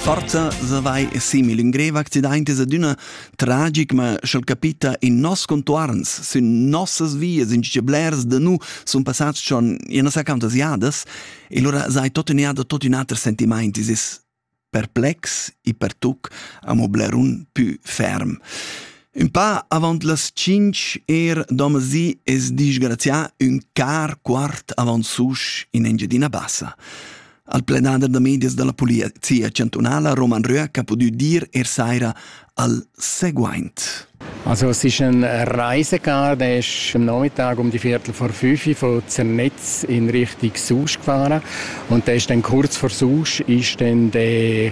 Forza savai simil ün grev accident es adüna tragic, ma sch'el capita in nos contuorns, sün nossas vias, in che blers da nu sun passats schon in nossa cantas jadas, e lura sai totüna da tot ün ater sentimaint, es es perplex e pertuc amo blerun pü ferm. Un pa avant las tschinch er domasi es disgrazià ün car quart avant susch in Engiadina Bassa. Al plenader da medias dalla polizia chantunala Roman Röhr ha pudü dir er saira al seguaint. Also es ist ein Reisegarde, ist am Nachmittag um die Viertel vor fünf von Zernetz in Richtung Susch gefahren und da ist dann kurz vor Susch ist dann der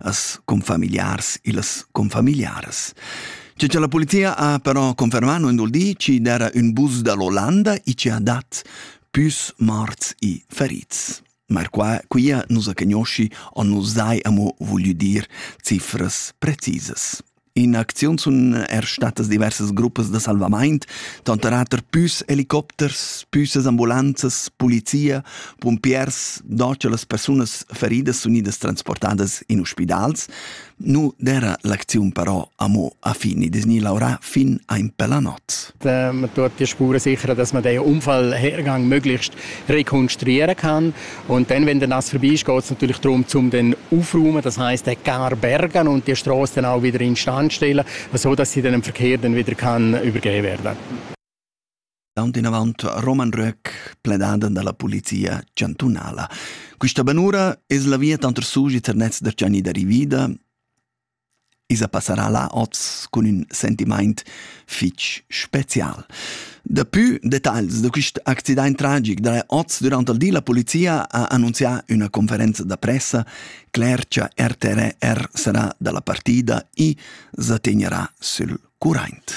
as confamiliars illas confamiliaras. Che cha la polizia ha però confermano in dul di ci d'era un bus da l'Olanda e ci ha dat pus morts e ferits. Ma qua, quia nus a cagnosci o nus dai amo voglio dir cifras precisas. In acziun sun er statas diversas gruppas da salvamaint, tanter auter püs helicopters, püsas ambulanzas, polizia, pumpiers, do cha las persunas feridas sun idas transportadas in ospidals. Nu d'era l'acziun però amo a fin, i desgni laurà fin a in pella not. Man tut die Spuren sicher, dass man den Unfallhergang möglichst rekonstruieren kann. Und dann, wenn das vorbei ist, geht es natürlich darum, um den aufräumen, das heißt den gar bergen und die Straße dann auch wieder instand stellen, so dass sie dann dem Verkehr dann wieder kann übergeben werden Tant in avant Roman Röck, pledando dalla polizia chantunala. Questa banura es la via tanter Sugi ter Netz der Gianni da Rivida I's passarà là hoz cun ün sentimaint fich special. Dapü detagls da quist accidaint tragic darà hoz dürant il di la polizia ha annunzià üna conferenza da pressa. Cler cha RTR sarà da la partida, i sa tegnerà sül curaint.